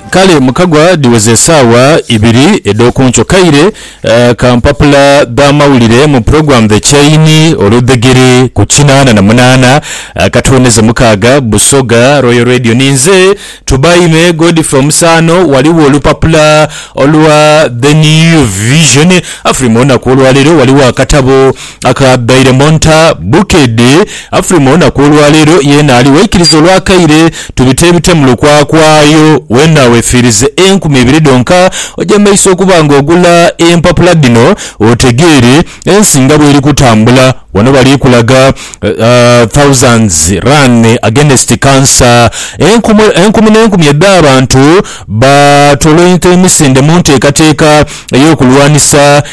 Kale mu kagwa dhiweze esaawa ibiri edh'okunkyo kaire ka mpapula dh'amawulire mu pulogulaamu The Chain olwo dhegere ku kinaana na munaana akatooneze mukaaga Busoga Royal Radio. Ninze Tubaime Godfrey Omusaano. Ghaligho olupapula olwa The New Vision. Afrima olunaku olwaleero ghaligho akatabo Akaabaire mu nta Bukedi Afrima olunaku olwaleero yeena ali waikiriza olwakaire tubiteebite mu lukwakwayo weena wefiirize enkumi ibiri dhonka ojemeisa okuba nga ogula empapula dhino otegeere ensi nga bweri kutambula wano bali kulaga thousands run against cancer enkumi n'enkumi edh'abantu baatoloinka emisinde mu nteekateeka ey'okulwanisa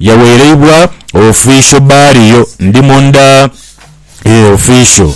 Yawereibwa official baliyo ndi munda eeh official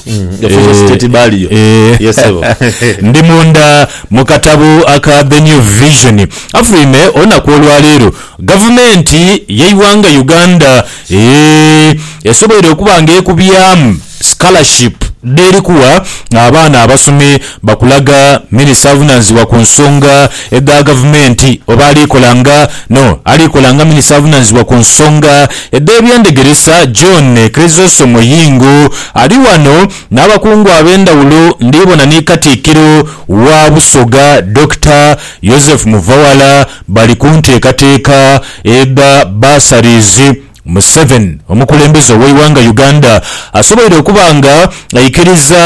eeh ndi munda mukatabo aka The New Vision afulwime olunaku olwaleero gavumenti yeiwanga Uganda eeh esoboire okuba nga ekubyamu Scholarship dheri kugha abaana abasome bakulaga Minisita avunanizibwa ku nsonga edha Gavumenti oba alikola nga no alikola nga Minisita avunanizibwa ku nsonga edh'ebyendegeresa John Chryzosom Yingo ali ghano n'abakungu ab'endhawulo ndhibona ni Katikkiro wa Busoga Dokita Yozefu Muvawala bali ku nteekateeka edha bursaries Museven omukulembeze ow'eighanga Uganda asoboire okuba nga aikiriza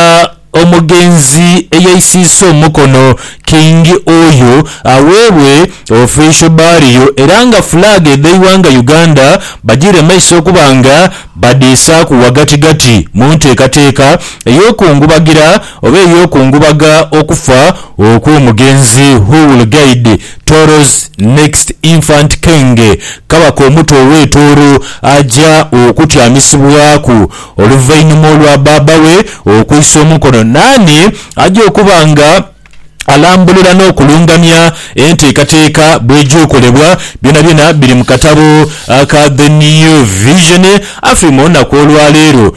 omugenzi eyeisiisa omukono King Oyo aweebwe Official Burial era nga flag edh'eighanga Uganda bajiire maiso okuba nga badhiisaaku ghagatigati mu nteekateeka ey'okungubagira oba ey'okungubaga okufa okw'omugenzi Huwul Gaid Tooro's next infant Kenge, Kabaka omuto ow'e Tooro aja okutyamisibwaku oluvainhuma olwa baaba we okwisa omukono naani aja okuba nga alambulula n'okulungamya enteekateeka bw'eja okolebwa. Byonabyona biri mu katabo aka The New Vision. Afi mu lunaku olwaleero.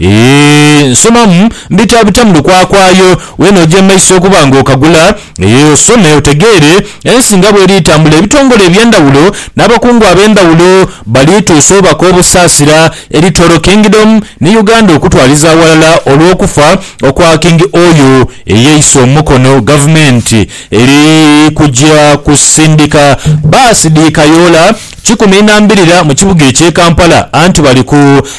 Eeh nsomamu mbitabita mu lukwakwayo we n'oja e maiso okuba nga okagula, eeh osome otegeere ensi nga bweri etambula ebitongole eby'endhawulo n'abakungu ab'endhawulo bali tuusa obubaka obusaasira eri Toro Kingdom ni Uganda okutwaliza aghalala olw'okufa okwa King Oyo eyeise omukono gavumenti eri kuja kusindika baasi dhi kayoola Kikumi na mbirira mu kibuga ekye Kampala anti bali ku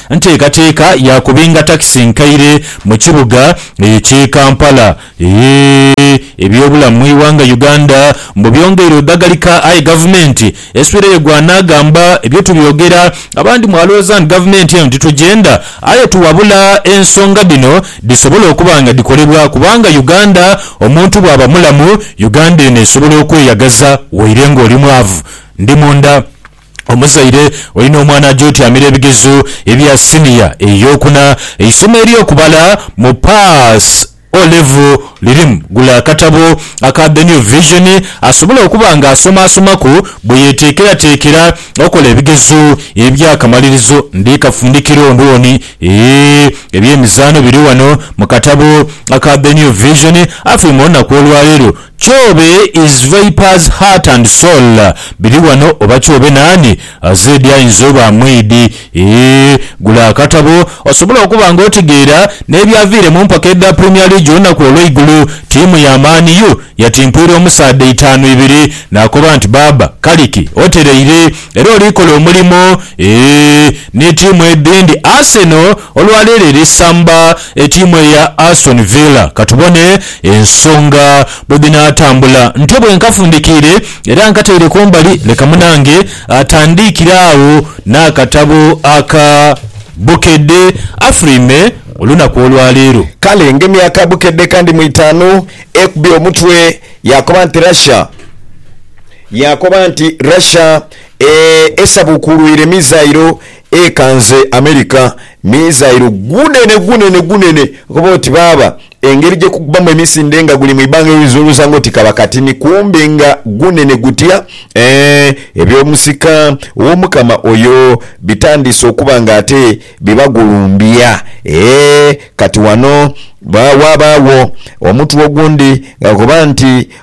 nteekateeka ya kubinga takisi enkaire mu kibuga ekye Kampala. Eehh ebyobulamu mu ighanga Uganda mbu byongeire odhagalika aye gavumenti eswireyo gwa naagamba ebyo tubyogera abandi mwalooza nti gavumenti eno titugyenda aye tuwabula ensonga dhino dhisobole okuba nga dhikolebwa kubanga Uganda omuntu bwaba mulamu Uganda eno esobola okweyagaza waire nga oli mwavu Ndi munda. Omuzaire olina omwana aja otyamira ebigezo ebya siniya ey'okuna. Eisomo ery'okubala mu Pass O Level lirimu. Gula akatabo aka The New Vision asobole okuba nga asomaasomaku bwe yeteekerateekera okola ebigezo eby'akamalirizo. Ndi kafundikira ondwooni. Eeh, eby'emizaano biri wano mu katabo aka The New Vision. Afirm olunaku olwaleero Kyobe is Vipers heart and soul biri wano oba Kyobe nani azedi ayinza oba mwidi eeh gula akatabo osobole okuba nga otegeera nebyaviire mumpaka edha Premier League olunaku olweigulo tiimu ya Man U yatimpwira omusaadha itaanu ibiri nakoba nti baaba kaliki otereire era olikola omulimo eeh ni tiimu edhindi Arsenal olwaleero eri samba Etiimu eya Aston Villa katubone ensonga bwedhinaatambula. Ntyo bwenkafundikiire era nkataire kumbali leka munange atandiikire agho n'akatabo aka Bukedde afulime olunaku olwaleero. Kale ngemye aka Bukedde kandi mu itaanu ekubye omutwe yaakoba nti Russia yaakoba nti Russia esabuukuulwire mizairo Ekanze America mizairo gunene gunene gunene okoba oti baaba engeri gyekukubamu emisinde nga guli mu ibanga oyinza olwooza nga oti kaba katini kumbe nga gunene gutya eeh eby'omusika ow'omukama oyo bitandiise okuba nga ate bibagulumbya eeh kati wano waabaawo omutu ogundi nga gukoba nti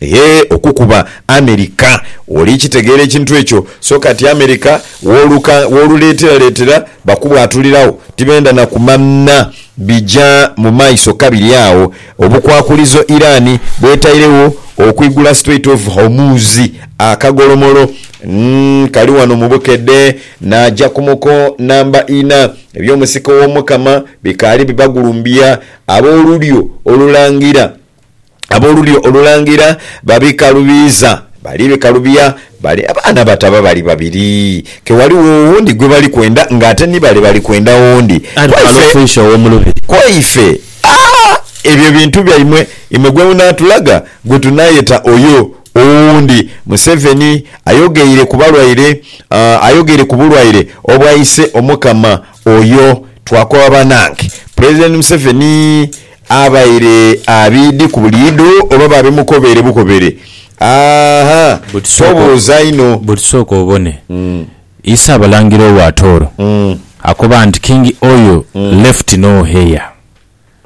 Eeh okukuba America. Oli kitegeera ekintu ekyo so kati America woluka woluletera letera bakubwatuliragho tibenda na kumanha bija mu maiso kabiri agho obukwakulizo Iran bwetairegho okwigula Strait of Hormuz akagolomolo kali wano mu bukedhe naja ku muko namba ina ebyomusika owomukama bikaali bibagulumbya abolulyo olulangira. Ab'olulyo Olulangira babikalubiiza. Bali bikalubia bale abaana bataba bali babiri, ke ghaligho owundi gwe bali kwenda ng'ate ni bale bali kwenda owundi. Aye kale ofuishe ow'omu lubiri. Ku ife, aa, ebyo bintu byaimwe imwe gwe munaatulaga gwe tunaayeta oyo owundi. Museveni ayogeire ku balwaire, aa, ayogeire ku bulwaire obwaise Omukama oyo. Twakoba banange. Pulezidenti Museveni Abaire abiidhi ku buli idho oba babimukobeere bukobeere? Aa-ha! Tobuuza inho. But sooka obone. Isa Abalangira owa Tooro akoba nti King Oyo left no heir.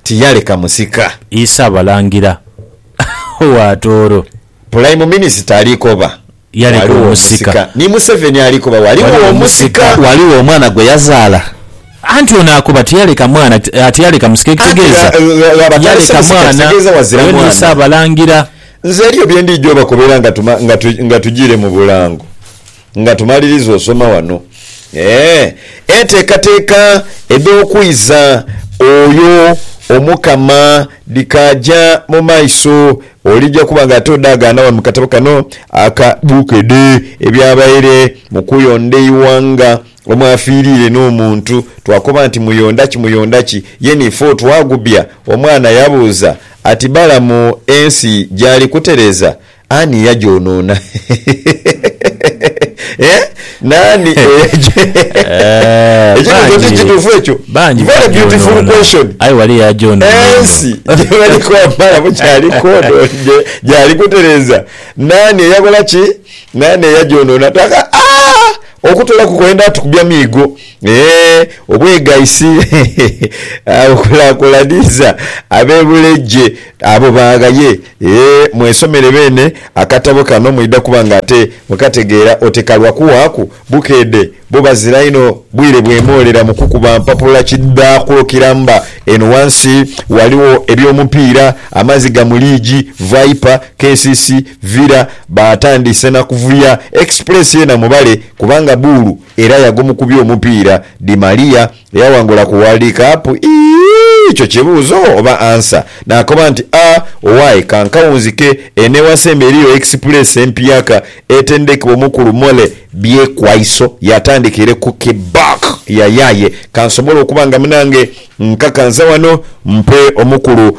Tiyaleka musika. Isa Abalangira owa Tooro. Pulayimu Minisita alikoba. yaleka omusika. Ni Museveni ali kuba Ghaligho omusika. Ghaligho omwana gwe yazaala. Anti ono akoba tiyaleka mwana, tiyaleka musika ekitegeeza yaleka mwana oyo niye Ssaabalangira. Nze eriyo bye ndiidha obakobera nga tujiire mu bulango nga tumaliriza osoma wano enteekateeka edh'okwiza oyo Omukama dhikaaja mu maiso Olija kuba nga todaagaana wano mu katabo kano aka Bukedde ebyabaire mu kuyonda eighanga omwafiirire n'omuntu. Twakoba nti muyonda ki muyonda ki ye ni fo twagubya. Omwana yabuuza ati Balamu ensi gyali kutereza ani yagyonona? Eeh! Nani eyeje Eh, ekibuzo ti bangi. kitufu ekyo Bangi very bagyonoona. beautiful question Aye wali yagyonoona eno. ensi gyebali kwambala bukyali kodo gye- gyali kutereza nani eyakola ki nani eyagyonona taka aah okutolaku kwenda tukubya miigo eeh obwegaisi awo kulakulaniza abebulegye abo baghaye Ee, mwesomere beene akatabo kano mwidha kuba nga ate mukategeera oti ka lwa kuwaaku bukeedhe bo bazira inho bwire bwemoolera mu kukuba mpapula kidhakulokiramba. Eno ghansi ghaligho eby'omupiira, amaziga mu liigi, Viper, KCC, Villa baatandise na kuvuya. Express yeena mubale kubanga buulu era yagomukubya omupiira. Di Maria Eyawangula ku World Cup ii, Ekyo kibuuzo oba answer? Naakoba nti, A Owaye ka nkawunzike, eno ewasemba eriyo Express empiyaka etendekebwa Omukulu Mole Byekwaiso yatandika ere ku Kibak yayaye kansobole okuba nga munange nkakansa wano mpe Omukulu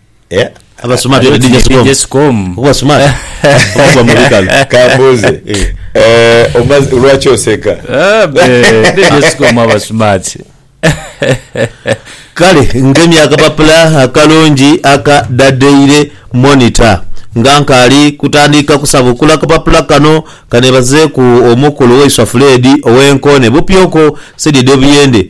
Eh? Abasoma Abe tuli DJ DJ Scom. Kuba smart. Kuba mu bikalu. Kambuuze eh, omaze- lwaki oseka Ah, be- DJ Scom aba smart. kale ngemye akapapula akalungi aka da daily monitor nga nkaali kutandika kusabukula akapapula kano kanebazeeku omukulu waiswa fuledi ow'enkoone bupyoko saidi edh'obuyende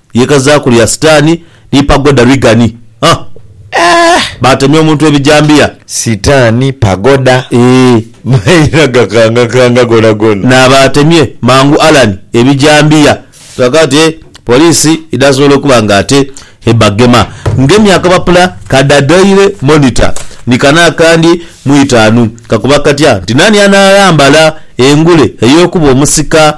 lyekazaaku lya Sitaani ni Pagoda Rigani. Huh! Eeh! Baatemya omuntu ebijambiya. Sitaani, Pagoda. Eeh! Mayina gakangakanga gonagona. N'abaatemye mangu Allan ebijambiya. Kiraga nti poliisi idhasobola okuba nga ate ebagema. Ngemye akapapula ka The Daily Monitor ni kano akandi mu itaanu. Kakoba katya nti naani anaaghambala engule ey'okuba omusika?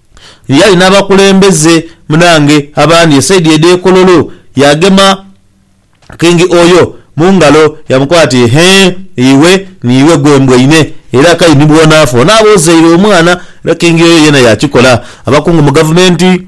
eyali n'abakulembeze munaange abandi esaidi edh'e Kololo, yaagema Kingi oyo mu ngalo yaamukoba ati, Ehee, iwe niiwe gwe mbwaine, era k'aye ni bw'onaafa onaaba ozaire omwana. Era Kingi oyo yeena yaakikola. Abakungu mu gavumenti.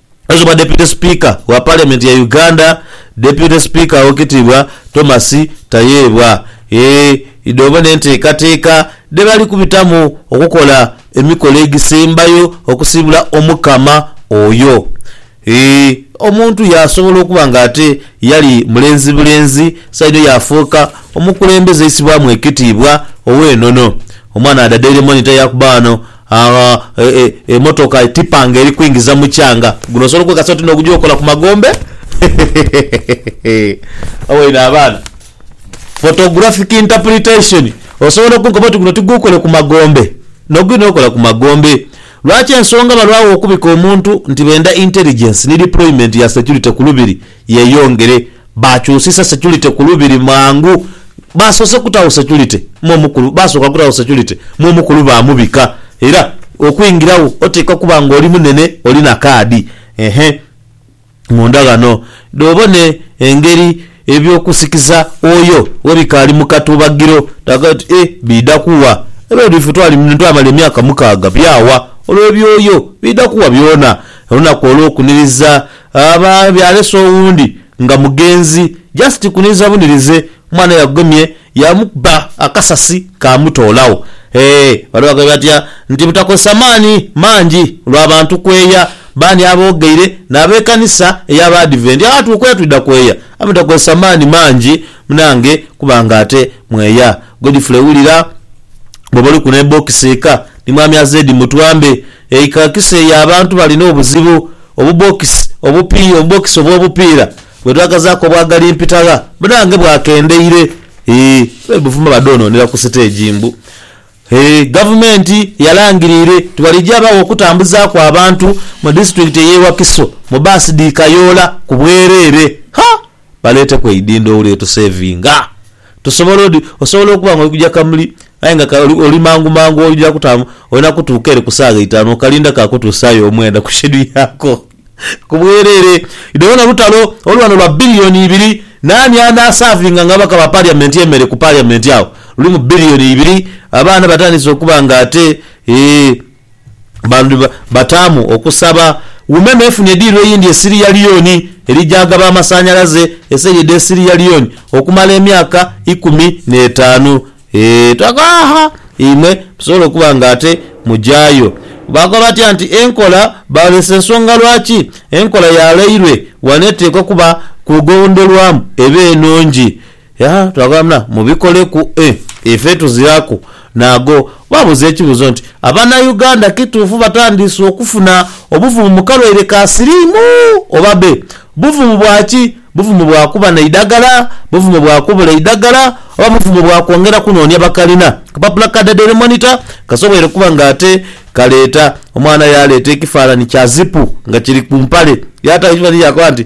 Abayizi ba Deputy Speaker wa Parliament ya Uganda Deputy Speaker Owekitiibwa Thomas Tayebwa e idhoobo n'enteekateeka dhebali kubitamu okukola emikolo egisembayo okusiibula Omukama oyo e omuntu yaasobola okuba nga ate yali mulenzi bulenzi saidho yaafuuka omukulembeze aisibwamu ekitiibwa ow'enono Omwana Adadaire Monitor yaakuba ghano Agha emotoka etipa nga eri kwingiza mukyanga guno osobola okwekasa oti nogugya okola ku magombe hehehehe waine abaana photographic interpretation osobola okunkoba oti guno tigukole ku magombe noguli nokola ku magombe lwaki ensonga balwagho okubika omuntu nti benda intelligence ni deployment ya security ku lubiri yeyongere. Baakyusisa securite ku Lubiri mangu. Baasoose kutaagho securite me omukulu, baasooka kutaagho securite me omukulu baamubika. Era okwingiragho oteekwa kuba ng'oli munene, oli na kaadi. Ehe. Munda ghano dh'obone engeri eby'okusikiza oyo we bikaali mu katubagiro. Taaga oti, Eh, biidha kuwa? Era olwo ife twali muno twamala emyaka mukaaga. Byawa? Olwo eby'oyo biidha kuwa byona? Olunaku olw'okuniriza. Aba byalese owundi nga mugenzi just kuniriza bunirize mwana yagomye yamukuba akasasi kamutoolagho eeh bano bagambye batya nti butakozesa maani mangi lwa bantu kweeya baani aboogeire n'abekanisa eya baadiventi agha tukweeya twidha kweeya aye mutakozesa maani mangi munange kuba nga ate mweeya Godfrey wulira bwoba oliku n'ebokisi eka ni mwami Azed mutwambe Eikaakisi eyo abantu balina obuzibu. Obubookisi obupiira, obubookisi obw'obupiira bwe twakazaaku obwa galimpita gha munange bwakendeire. Eeh, abe Buvuma badhonoonera ku siteegi mbu, Eeh, Gavumenti yalangiriire nti bwalijaagho okutambuzaaku abantu mu disitulikiti ey'e Wakiso mu bbaasi dhi kayoola ku bwereere. Ha! baleeteku eidhindho wule tuseevinga. Tusobola oti, osobola okuba nga oli kuja kamuli aye nga ka oli, oli mangu mangu oidha kutaamu, olina kutuuka ere ku saagha itaanu okalinda kaakutuusaayo omwenda ku shedu yaako. Ku bwereere, idho wona lutalo olu wano lwa billion ibiri. Naani anaasavinga nga ababaka ba parliament emere ku parliament agho? Lulimu billion ibiri, abaana batandise okuba nga ate, eeh. Bali bataamu okusaba Wuma n'efuna ediiro eyindi e Siriya Liyoni eri gy'agaba amasanhalaze eseli edh'e Siriya Liyoni okumala emyaka ikumi n'etaanu. Eeh twagha aha imwe musobole okuba nga ate mugyayo. Baakoba batya nti enkola Baalese ensonga lwaki enkola yaalairwe ghano eteekwa okuba ku gondolwamu eba enungi. Yaa twagamba mubikoleku e ife tuziraku naago. Baabuuza ekibuuzo nti, Abanauganda kituufu batandiise okufuna obuvumu mu kalwaire ka siriimu oba be? Buvumu bwa ki? Buvumu bwa kuba n'eidagala? Buvumu bwa kubula eidagala? Oba buvumu bwa kwongera kunoonia bakalina kapapula ka Dadely Monitor kasoboire okuba nga ate kaleeta omwana yaaleeta ekifaananyi kya zipu nga kiri ku mpale yaata ekifananhi yakoba nti,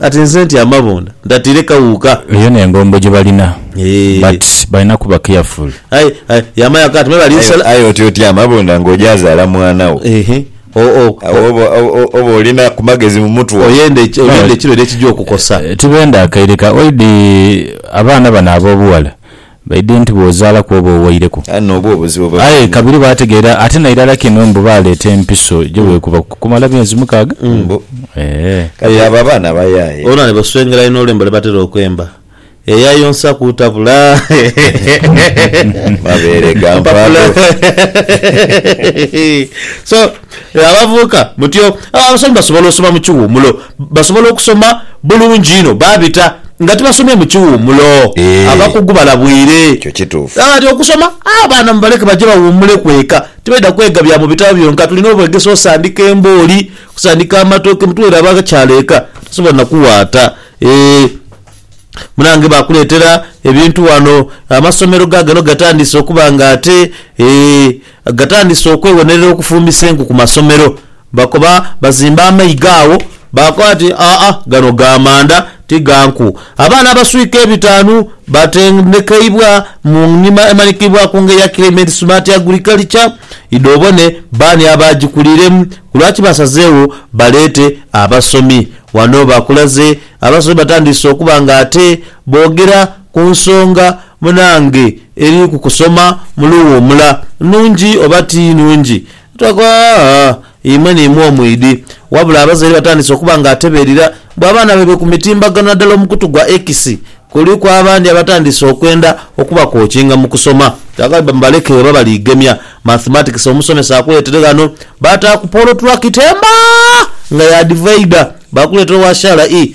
Kati nze ntya amabonda ntatire kawuuka. Eyo nengombo gyebalina but balina kuba careful. Aye yama yaka ati mwebale nsala. Aye otya otya amabonda nga ojazaala mwana wo. Awo oba olina kumagezi mumutwe ogwo. Oyenda ekirwaire ekija okukosa. Tibenda akaire ka oidi abaana bano abobughala Baidhe nti bw'ozaalaku oba owaireku. Aye n'obwo obuzibu bwe Aye bwona. kabiri baategeera ate na irala kino mbu baaleeta empiso gye bwekuba okumala myezi mukaaga. Mbu. Eehh. Kati abo abaana bayaaye. Olwo ni baswengera inho olwembo lwe batera okwemba, Eyayonsa kutabula mabeere ga mpaago. mpapula. So. Eeh abavubuka mutyo aah abasomi basobola osoma mukiwumulo basobola okusoma bulungi inho babita nga tibasomye mukiwumulo abakugu balabwire kati okusoma abaana mubaleke baje bawumuleku eka tibaidha kwega bya mubitabo byonka tulina obwegesa osandika embooli okusandika amatooke mutuweere abakyala eka tosobola nakuwaata eeh munange bakuletera ebintu wano amasomero gagano gatandise okuba nga ate eeh. Gatandise okweghonerera okufumbisa enku ku masomero. Bakoba bazimba amaiga agho baakoba bati, Aa, gano ga manda, ti ga nku. Abaana abaswika ebitaanu baatendekeibwa mu ngima emanhikiibwa ku ngeri ya Climate Smart Agriculture, idhobone baani abaagikuliremu, ku lwaki baasazeegho baleete abasomi. Ghano baakulaze abasomi batandise okuba nga ate boogera ku nsonga munange. Eri ku kusoma mu luwuumula, nnhungi oba ti nnhungi, twakoa imwe ni imwe omwidhi. Wabula abazaire batandise okuba nga atebeerira mbu abaana baibwe ku mitimbagano naddala omukutu gwa X, kuliku abandi abatandise okwenda okubakookinga mu kusoma. Twagala bamubaleke oba baliigemya Mathematics omusomesa akuleetere ghano baataaku Paul Twakitemba nga y'adivaida, baakuleetera owa Shala ii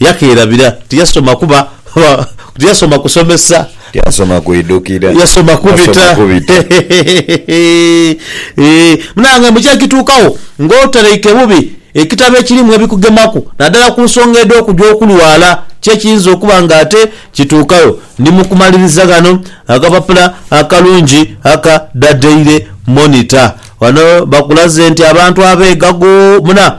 Yakeerabira. Tiyasoma kuba, kuba, tiyasoma kusomesa. Tiyasoma kwidhukira. Yasoma kubita. Eeh, munange mbu kyekituukagho ng'otalaike bubi ekitabo ekirimu ebikugemaku naddala ku nsonga edh'okugya okulwala, ki ekiyinza okuba ng'ate kituukagho. Ndi mu kumaliriza ghano akapapula akalungi aka The Daily Monitor. Ghano bakulaze nti abantu abeegago muna.